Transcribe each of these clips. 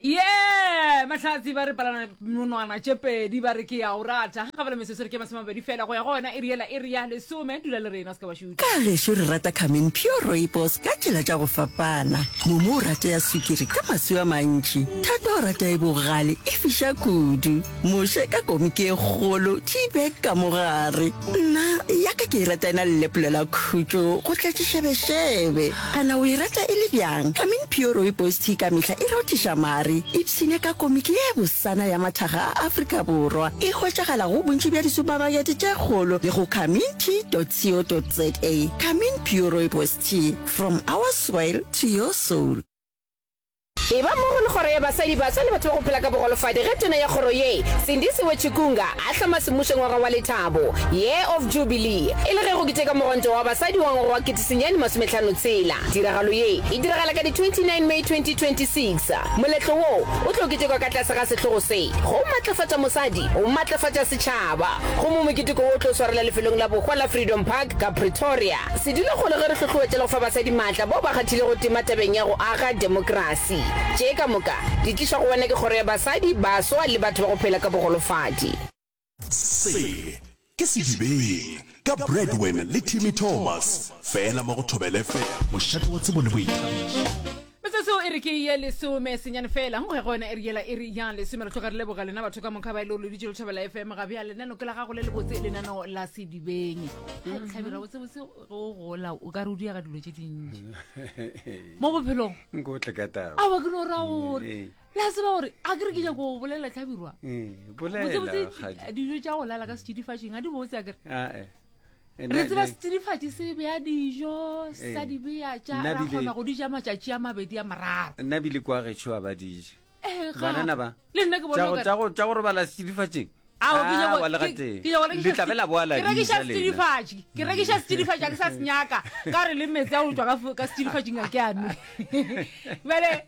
ye mahlatsi ba re palana monwana tše pedi ba re ke ya o rata ga bala mesesere ke masome mabedi fela go ya go yona e riela e ria lesome dula le rena se ka ba šutša ka gešo re rata camin pure roibos ka tsela tša go fapana momo o rate ya swikiri ka maswi a mantši thato o rata e bogale e fiša kudu Moše ka komiki e kgolo, tea bag ka mo gare. Nna, ya ka ke e rata e na le leplo la khutšo go tletšiša bešebe. A na o e rata e le bjang? I mean pure rooibos tea ka mehla e rothiša mare. Ipshine ka komiki ye bosana ya mathaga a Afrika Borwa. E hwetšagala go bontši bja disupamakete tše kgolo le go kamintea.co.za. Kamin pure rooibos tea, from our soil to your soul. Eba mmogo le Kgoro ya Basadi, Baswa le Batho ba go Phela ka Bogolofadi ge Tona ya Kgoro ye, Sindisiwe Chikunga, a hloma semmušo ngwaga wa lethabo, Year of Jubilee, e le ge go keteka Mogontwa wa Basadi wa ngwaga wa ketesenyane masometlhano tshela. Tiragalo ye e diragala ka di 29 May 2026. Moletlo wo o tlo ketekwa ka tlase ga sehlogo se, Go matlafatša mosadi, go matlafatša setšhaba. Gomme moketeko wo o tlo swarela lefelong la bohwa la Freedom Park ka Pretoria. Se dule gona ge re hlohloetšela go fa basadi maatla bao ba kgathilego tema tabeng ya go aga demokrasi. Tše ka moka di tlišwa go wena ke Kgoro ya Basadi, Baswa le Batho ba go Phela ka Bogolofadi. Se ke Sedibeng ka Bradwin le Timmy Thomas, fela mo go Thobela FM. Mošate wa tsebo le boithabišo. metsotso e re ke ye lesome senyane fela go ya go yona e re yela e re yang lesome re tloga re leboga lena batho ka moka ba e le o loditše letšhabela fm ga bja lenano ke la gago le lebotse lenano la sedibeng ga tlhabela botsebotse go gola o ka re o diaga dilo tše dintši mo bophelong nkotle ka taba aba ke no ra gore Eh, la tseba gore a ke re ke nyako go bolela tlhabirwa eh, botsebotse bolela kgadi. dijo tša go lala ka setšidifatšeng a di botse a kere Ah, eh. re tseba setsidifatši se beya dijo sa eh. di beya tša ra kgona go di ja matšatši a mabedi a moraro nna bile kwa gešo a ba dije eh, banana ba tša go robala setsidifatšing ke rekiša setsidifatši a ke sa senyaka ka re le metsi a go tswa ka setsidifatšing a ke ame bale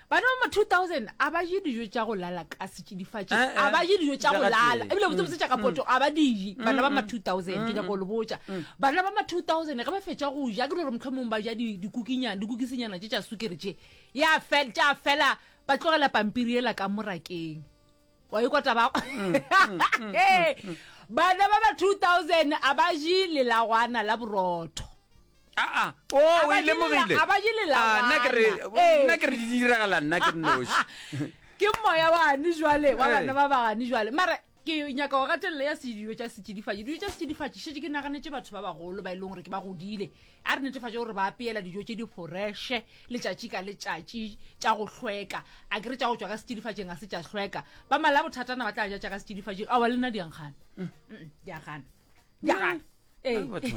Bana ba ma 2000 a ba je dijo tša go lala ka setšidifatši, eh, eh, a ba je dijo tša go lala ebile botsebotse tša ka mm, poto mm. a ba dije. Mm, bana ba ma 2000 ke nyako le botša bana ba ma 2000 ge ba fetša go ja ke le gore motlho mongwe ba ja dikukinyana dikukisenyana tše tša sukere tše ya fela ba tlogela pampiri ela ka morakeng wa ikwa taba bana ba ba 2000 a ba je lelagwana la borotho aa o o Aba e lemogile dilela- aba dilela Ah, nna ke re- bana. Ee. nna ke re di diragala nna ke noši ke moya wane jwale wa Eh. bana ba bagane jwale mara ke nyaka go gatelela ya sedijo tša setšidifadi dijo tša setšidifadi šetse ke naganetse batho ba bagolo ba e leng gore ke ba godile A re netefatše gore ba apeela dijo tše di foreše letšatši ka letšatši tša go hlweka. A ke re tša go tšwa ka setšidifatšeng ga se tša hlweka. Ba malabothatana ba tla ja tša ka setšidifatšeng. Aowa, le nna di a nkgana. Mm. Mm, di a gana. Di a gana. Ee. Ah, batho.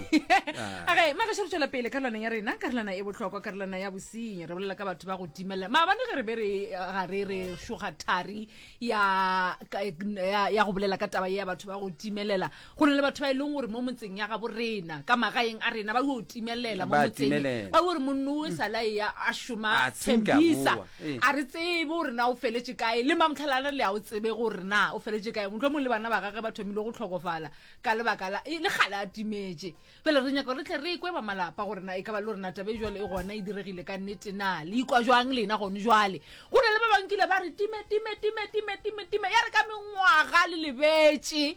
Ah. Okay, magaše re tšwela pele karolwaneng ya rena karolwana e bohlokwa karolwana ya bosenyi re bolela ka batho ba go timelela maabane ge re be re ga re re šoga thari ya ka- ya ya go bolela ka taba ye ya batho ba go timelela Go na le batho ba e leng gore mo motseng ya gabo rena ka magaeng a rena ba yo timelela mo motseng ba gore monno o sa la ya a shoma tshembisa a re tsebe gore na o feletse kae le mamtlhalana le a o tsebe gore na o feletse kae motho mo le bana ba gagwe ba thomile go tlhokofala ka lebaka la le gale a timetse fela re nyaka re tle re ikwe ba malapa gore na e ka ba le rena tabe jwale e gona e diregile ka nnete na le ikwa jwang lena gone jwale go na le ba bankile ba re time time time time time time ya re ka mengwaga le lebetse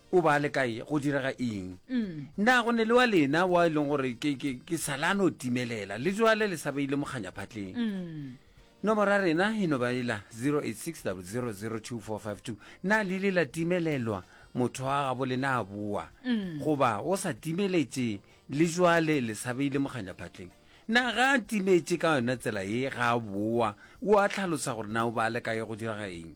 O ba le kae? Go direga eng? Na go ne le wa lena wa e leng gore ke, ke, ke salano timelela le jwale le sa beile mokganyaphatleng? Nomoro ya rena e no ba ela 0860000242. Na le ile la timelelwa motho wa gabo le na a boa? Goba o sa timeletše le jwale le sa beile mokganyaphatleng? Na ga a timetše ka yona tsela ye ga a boa, o a tlhalosa gore na o ba le kae? Go direga eng?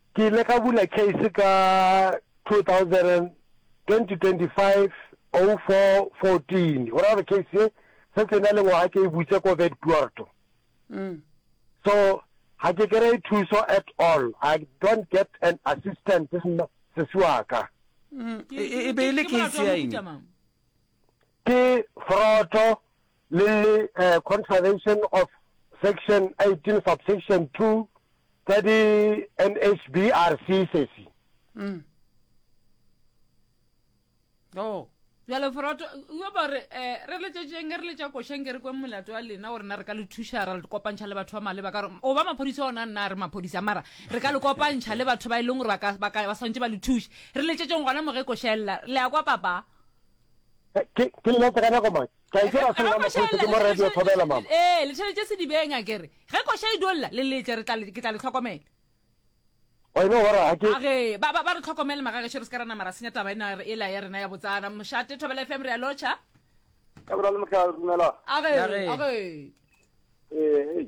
Ke ile ka bula case ka 2020-25-04-14, go ra gore case ye se se na le ngwaga ke e butse ko Vet Puerto. Mm. So ga ke kry thuso at all. I don't get an assistance sesiwaka. Mm. E, e, e be e le case ya eng? Ke Foroto le le Contravention of Section 18 Subsection 2 tsa di NHBRC sesi. Mm. Oh. Jalo Foroto, yo ba re, eh, re le tšetšeng, re le tša košeng, ke re kwe molato wa lena, gore na re ka le thuša, ra le kopantšha le batho ba maleba, ka gore, o ba maphodisa ona, nna re maphodisa, mara, re ka le kopantšha le batho ba e leng gore ba ka, ba ka, ba swantše ba le thuše. Re le tšetšeng gona mo ge košella, le a kwa papa? ke ke le letse ka nako mang ke a ikela se la maphosa ke mo radio thobela mama eh le tšhelete se dibeng a kere ge koša e dolla le letle re tla le ke tla le tlhokomela wa ino gore a ke a ge ba ba ba re tlhokomele magage shere se ka rana mara senya taba ena e la ya rena ya botsana mošate thobela fm re ya locha ka bra le motla rumela a ge a ge eh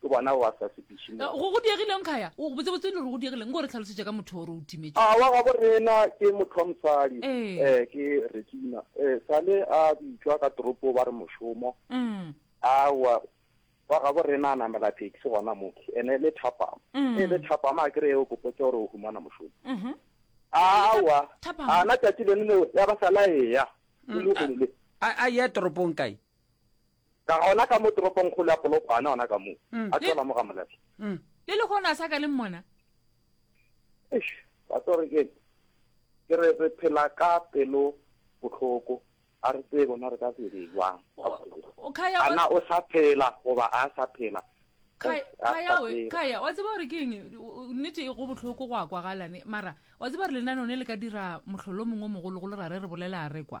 Ke bona ba sa sepiše mo. Go, go diegileng, Khaya? O, botsebotse e le gore go diegileng? Nko re tlhalosetše ka motho o re o timetše. A, wa gabo rena ke motho wa mosadi. Ee. Ee, ke Regina. Ee, sale a bitšwa ka toropo ba re mošomo. Umm. Aowa, wa gabo rena a namela taxi gona mo, ene e le thapama. Umm. E le thapama, a ke re e o ko potše gore o humana mošomo. Uhum. Aowa, Thapama. a na tšatši leno leo ya ba sale a eya, le lehono le. A, a eya toropong kae? Ka gona ka mo toropongkgolo ya Polokwane, gona ka moo, a tšwela mo ga Molehlo. Le lehono a sa ka le mmona? Eish, wa tseba gore ke eng? Ke re re phela ka pelo bohloko, ga re tsebe gona re ka se dire jwang. O- Khaya, A wa- na o sa phela goba a sa phela? Khaya, Eish, ga Khaya sa we, tseba. Khaya, wa tseba gore ke eng? O- o- Nnete e go bohloko go a kwagalane, mara wa tseba gore lenaneo ne le ka dira mohlolo o mongwe o mogologolo ra re re bolela a re kwa.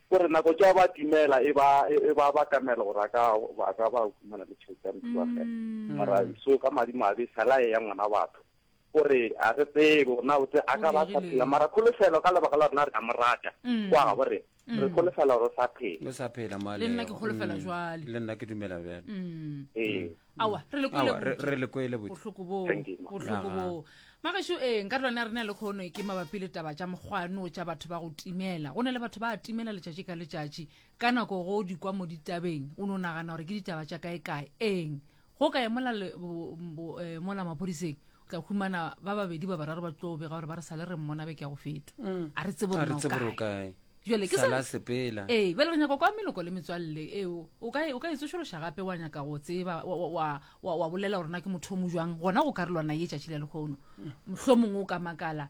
O re nako tša ba timela e ba e ba ba kamela gore a ka ba ka ba humana le tšhelete ya motho wa gena mm. mara so ka madi mabe salaye ya ngwana batho o re a re tsebe gore na botse a ka ba sa phela mara kholofelo ka lebaka la rena re ka mo rata mm. kwa ga bo re mm. re kholofela gore o sa phela o sa phela male le nna ke kholofela jwale le nna ke dumela bjale ee awa re le kwele Awa, re- botse. re le kwele botse. bohloko boo Thank you, ma. bohloko Aha. boo magašo ee nka rona re na le kgono e ke mabapi le taba tša mokgwano tša batho ba go timela go na le batho ba a timela letšatši ka letšatši ka nako go di kwa mo ditabeng o no nagana gore ke ditaba tša kaekae eng go ka emola le- bo- bo- eh, mola maphodiseng tla humana ba babedi ba bararo ba tlo bega gore ba re sale re mmona beke ya go feta mm. a re tsebo re tsebo re kae jale ke sala sepela ee bele re nyaka kwa meloko le metswalle ee o ka o ka e tsošološa gape wa nyaka go tseba wa wa wa wa bolela gore na ke motho o mo jwang gona go karolwana ye tšatši le lekgono mohlomongwe o ka makala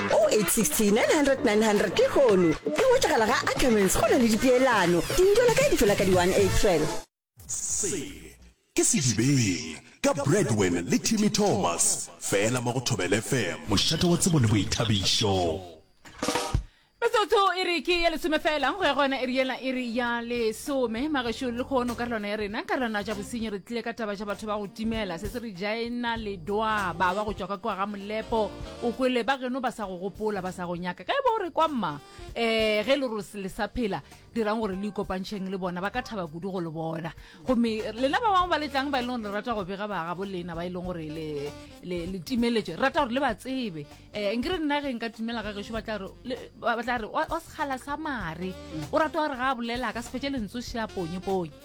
0860900900 ke kgono e hwetšagala ga ackermans go na le dipeelano dintwela kae di fela ka di 1 april se ke sedibeng ka bradwin le timmy thomas fela mo go thobel fm mošate wa tsebo le boithabišo Metsotso e re ke ya lesome fela go ya go yona e re yela e re ya lesome magešo le kgono ka relwana ya rena ka relwana ja bosenyi re tlile ka taba ja batho ba go timela se se re jaena ledwaba wa go tšwa ka kwa ga molepo O kwele ba geno ba sa go gopola, ba sa go nyaka. Ka e ba o re kwa mma, ee, ge e le gore se le sa phela, dirang gore le ikopantšheng le bona, ba ka thaba kudu go le bona. Gomme lena ba bangwe ba le tlang, ba e leng gore le rata go bega bagabo lena, ba e leng gore le, le, le timeletše, re rata gore le ba tsebe. Um nkere nna ge nka timela ga gešo, ba tla re, le, ba ba tla re, wa, wa sekgala sa mare, o rata gore ga a bolela a ka se fetše lentswe šea ponyeponye.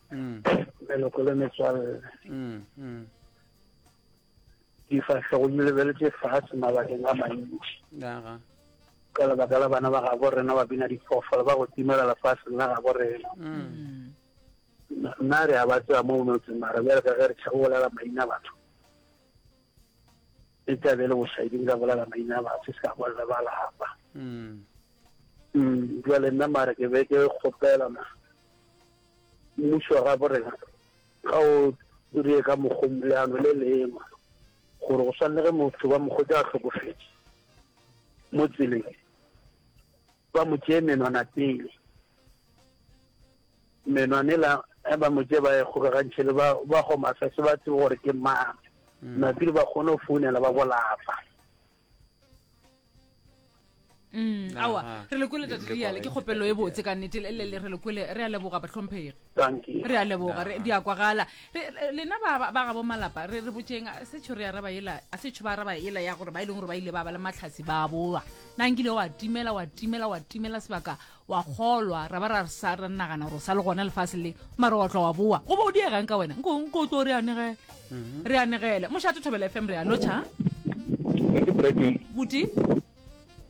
mm. leloko le metswalle mm, mm. difahlego di lebeletse fatshe mabakeng a mantši ka lebaka la bana ba gabo rena ba bina diphoofolo ba go timela lefatsheng la gabo rena nna re a ba tseba mo motseng mara bjale ka ge re tšhabo bolela maina batho e tla be le bosaiding ka bolela maina batho se ka bolela ba lapa jale nna mare ke be ke kgopela ma Mmušo wa gabo rena ga o dire ka mokgong leano le leema gore go swanne ge motho ba mokgotse a hlokofetše mo tseleng ba mo tšee menwana pele menwane la eh, ba mo tšee ba e kgokagantšhe le ba gomasa se ba tsebe gore ke mang mm. napile ba kgone go founela ba bolapa Mm, ah, awa ah. re le kwele tate diale ke kgopelo e botse ka nnete le re le kwele re a leboga batlhomphegi re a leboga di a kwagala lena ba gabo malapa re re botseng setsho re araba ela a setsho ba araba ela ya gore ba e leng gore ba ile ba ba le matlhasi ba boa na nkile wa timela wa timela wa timela sebaka wa kgolwa ra ba ra sa ra nagana gore o sa le gona lefase le mara wa tlwa wa boa go ba o diegang ka wena nko nko o tlo re anegele mhm. re anegele mošate thobela f m re a lotšha buti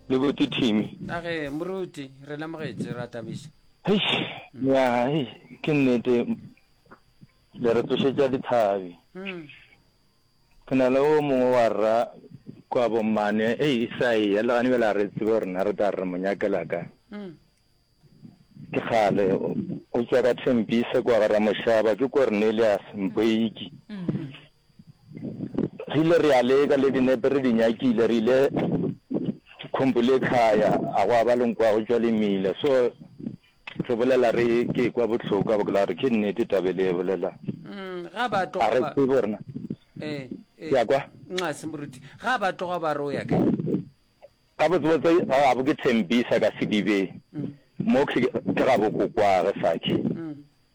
le buti thimi age moruti re lemogetse ra tabiša ya ke nnete le re tsošetša dithabi mm. Go na le o mongwe wa rra kwa bommane, ei isai ya legane bjela re tsebe gore na re tla re mo nyakela ka ke kgale o tswa ka thempise kwa gara mošaba ke cornelius mpoiki re ile re a leka le dinepe re di nyakile re ile khompo le khaya a go a ba lenkwago tswa le mmile so Tlo bolela re ke kwa bohloko a bolela gore ke nnete tabe le e bolelang. Mm, ga ba tloga ba. Are se borna. Eh, eh. Ya kwa. Nxa se moruti. Ga ba tloga ba re o ya kae? Ka botsebotse ga bo ke thembisa ka sedibeng. Mm. Mo ke ke ga bo kokwa re sakhe. Mm.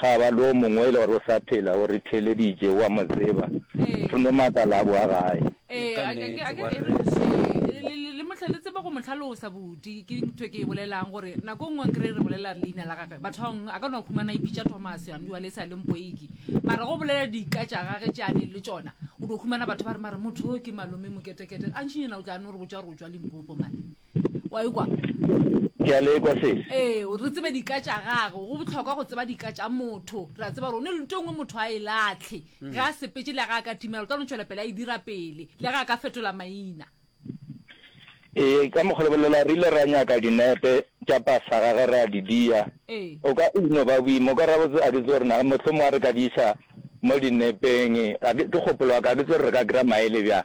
Ga ba le o mongwe e le gore o sa phela, o re theeleditše, o a mo tseba, thome makala a boa gae. Ee, a ke, a ke, ee, le, le, le mohla, le tseba go mo hlalosa bodi, ke ntho e ke e bolelang, gore nako nngwe nkere re bolela leina la gage, bathong, a ka no khumana ipitša Thomas, and wale e sa le mpoiki, mara go bolela dika tša gage tše a neng le tšona, o do khumana batho ba re, mara motho o ke Malome Moketekete, gantšinyana o tla no re botša gore o tšwa Limpopo, man. wa e kwa ke a le kwa sesi ee re tsebe dika tša gago go botlhokwa go tseba dika tša motho re a tseba gore o ne le nto e nngwe motho a e latlhe mm. ge a sepetse le ga a ka timela o tla no tšwela pele a e dira pele le ga a ka fetola maina ee ka mokgwa lebelela re ile ra nyaka dinepe tša pasa ga ge re a di dia ee. o ka ino ba boima o ka ra botse a ke tse rena motlho mo a re ka di isa mo dinepeng ke kgopolo wa ka ke tse re ka kry maele bjang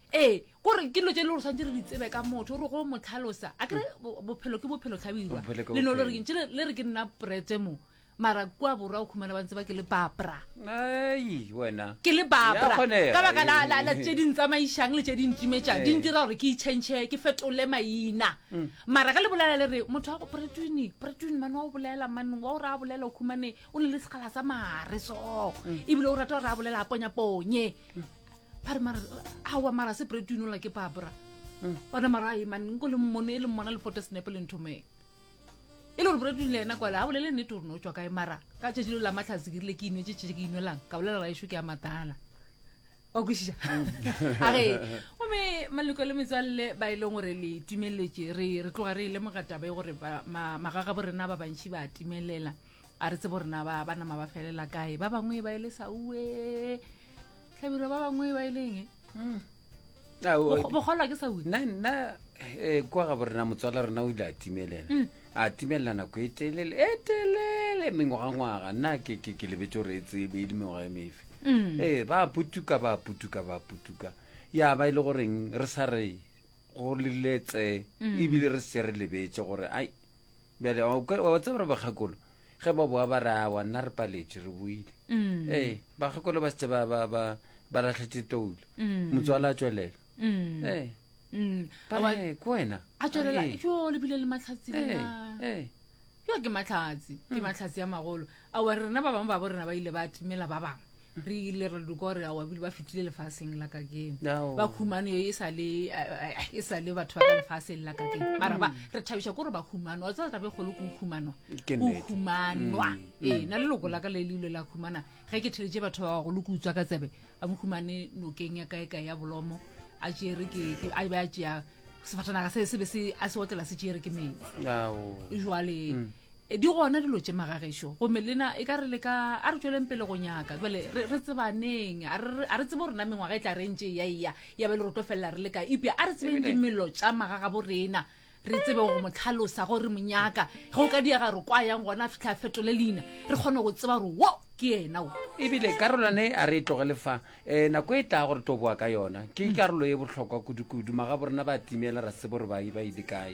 ee kore ke dilo tse e le gore tshwanetse re di tsebe ka motho gore go mo tlhalosa a kere bophelo ke bophelo tlhabirwa Bophelo ke le no le re bophelo. ntse le le re ke nna prete mo mara kua borwa o khumana ba ntse ba ke le bapra ai wena ke le Ya babra kgonega, ka baka la ee. la- la tse di ntsamaisang le tse di ntimetsang di Ee. ntira gore ke itšhentšhe ke fetole maina mara ka le bolela le re motho wa go pretwini pretwini mane wa o bolela mane wa o re a bolela o khumane o ne le segala sa mare so ebile o rata gore a bolela a ponyaponye ba re mara awa mara se brate inola ke babra ona mara a emane nko le mmone e le mmona le fote senepe le nthomeng e le gore brate inola ena kwale a bolele nnete gore ne o tswa kae mara ka tšatši lo la matlhatsi ke rile ke inwe tše tšee ke inwelang ka bolela raešo ke a matala wa kwešiša a re gomme maloko le metswalle ba e leng gore le timeletše re re tloga re e lemoga taba e gore ba- ma- magagabo rena ba bantši ba timelela a re tsebo rena ba ba nama ba felela kae ba bangwe ba ile sa uwe tlhabiro ba bangwe ba ileng e? hmm. bogolwa ke sa uwe nna nna eh, kwa ga borena motswala rona o ile a timelela hmm. a timelela nako e telele e telele mengwagangwaga nna ke lebetse gore e tsebe e le mengwaga e mefe hmm. ee eh, ba putuka ba putuka ba putuka ya ba e le goreng re sa re go leletse ebile re se re lebetse gore ai bjale wa tseba gore bakgakolo ge ba boa ba re awa nna re paletše re boile mm. ee bakgakolo ba setse ba latlhetse toulo mm. motswala a tswelela mm. ee ko wena a tswelela jo lebile le matlhatsi yo ke matlhatsi ke matlhatsi a magolo awa rena ba bangwe ba bo rena ba ile ba timela ba bangwe re ile re duka gore ao abile ba fetile lefaseng la kakeno Ao. ba humane yo e sa le eh, e sa le batho ba ka lefaseng la kakeno mara ba re thabiša ko gore ba humanwa wa tseba tabe kgolo ko o humanwa Ke o nnete. humanwa ee na leloko la ka le leile la humana ge ke theletše batho ba bagolo ke utswa ka tsebe a mo humane nokeng ya kae kae ya bolomo a tšere ke ke- a be a tšea sefatanaga se se be se a se otlela se tšere ke metsi ao jwale E di gona dilo tše magagešo gomme lena e ka re le ka a re tšweleng pele go nyaka jale re tsebaneng a re tsebe gore na mengwaga e tla re ntše ya eya ya be le re tlo felela re le ka epja a re tsebeng dimelo tša magaga bo rena re tsebe go mo tlhalosa gore re mo nyaka ge o ka diega re kwa yang gona a fitlha a fetole leina re kgone go tseba gore wo ke ena o ebile karolwane a re e tlogele fa um nako e tla gore to boa ka yona ke mm. karolo e bohlokwa kudukudu maga bo rena ba timela ra sebo re ba e ba ile kae